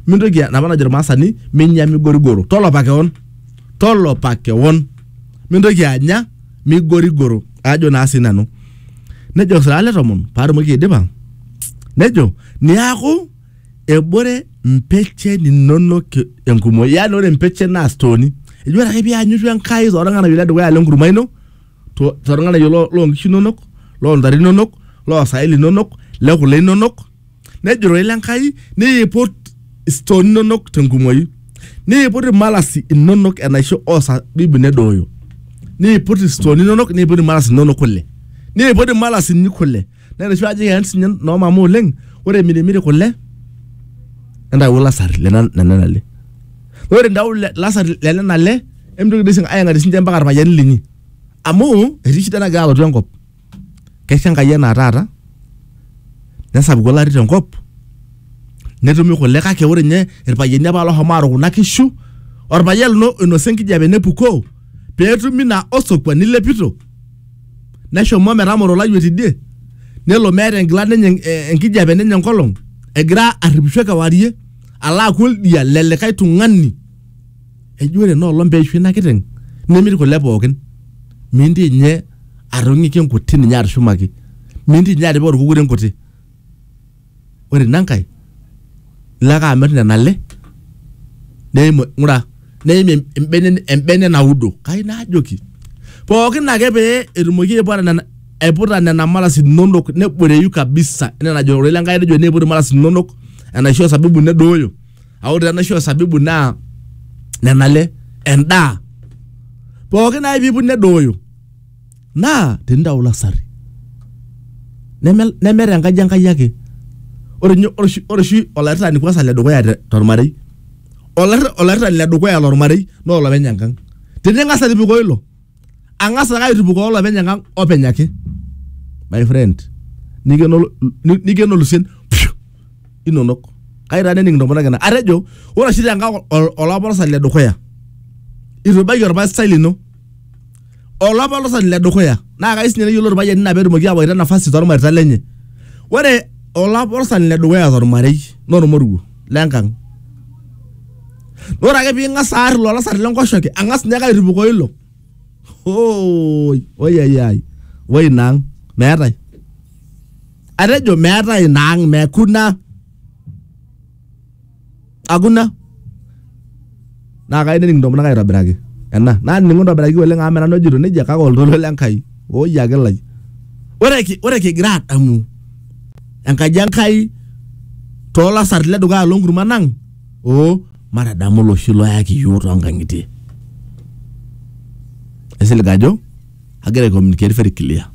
mintoki napa najo irmaasani minya migorigoro tolopa kewon tolopa kewon mintoki anya migorigoro ajo naa sii nanu nejo osilaa le tomon paatumoki aidipa nejo niaku ebore mpechen inonok enkumoi yaani ore mpechen naa stooni eji ore ake pianyorru Enkai torng'anayio le dukuya le nkurma ino to- torng'anayio lo- loonkishu inonok loontare inonok loosaen linonok le kule inonok Nejo ororei le Nkai, niiput istooni inonok tenkumoi, niiput imalasi inonok enaisho osabibu nedooyo, niiput istooni inonok, niiput imalasi inonok kule, niiput imalasi inyi kule. Naa enoshi aji eyan sinye noo mama oleng, ore imirimiri kule entawuo lasar le na- nena ale. Ore intawuo le- lasar le nena ale, emitoki doi sii ayang'arie sinche mpaka irpayiani linyi. Amu etii shida nagira alotu enkop. kaisho Enkai anaa taata nesapuku olari tenkop netumi kule kake ore ninye irpayiani apa loshomo aaru kuna kishu orpayian lino oinosa enkijape nepukoo peetumi ina osokua nilepito neshomo metamoro olayioni tidie nelo meeta enkila nenye eh, enkijape nenye enkolong egira arripisho kewarie alo aaku oldia lelikae tung'ani. eji ore ena olong peishu ina kiteng nimir kule pookin minti inye atong'iki enkuti ninye atushumaki minti inye atipika orkukuri enkuti ore ina nkae ilo ake amirr nena ale neim ng'ura neim em- embene embene naudo kai naajoki pookin ake pee etumoki aiputa nena aiputa nena maras inonok neboreyu kabisa enaa enajo ororei lenkai nejo eniput imaras inonok enaisho osabibu nedooyo. a ore taa enaisho osabibu naa nena le endaa pooki naai piiput nedooyo naa tenintau lasarri neme neme tenkaji enkai ake ore ninye ore oshi ore oshi olairritani kwanza ledukuya te- tormarei olairri- olairritani ledukuya lormarei naa olopeny enkang tening'as atipikoo ilo ang'as ake aitupukoo olopeny enkang openy ake my friend nikeno ol- ni- nikeno lusien pshu, inonok kai taa nening intomonok ena atejo ore oshi tenkang ol- olapolosan le dukuya itu ibaiki orpastai lino olapolosan le dukuya naa kai sinye neyiolo irpayiani ina peetumoki awaita nafasi tormareita lenye ore olapolosan le dukuya tormarei naa ormoruo lenkang ore ake ping'as aar ilo lasar lenkoshoke ang'as ninye ake airipukoo ilo oi oiyaiyai oi ina ang meetae atejo meetae ina ang mekuna akuna naa kayieu nening intomonok aitobiraki ena nanining'u intobiraki oleng amu menanu ojito nejia kake oltoilo le Nkai oi ake lai ore ki- ore kigira adamu enkaji Enkai toolasarri le dukuya loonkurman ang oo matadamu oloshi loyaki iyiook toonkang'itie aisilig ajo agira ai communicate very clear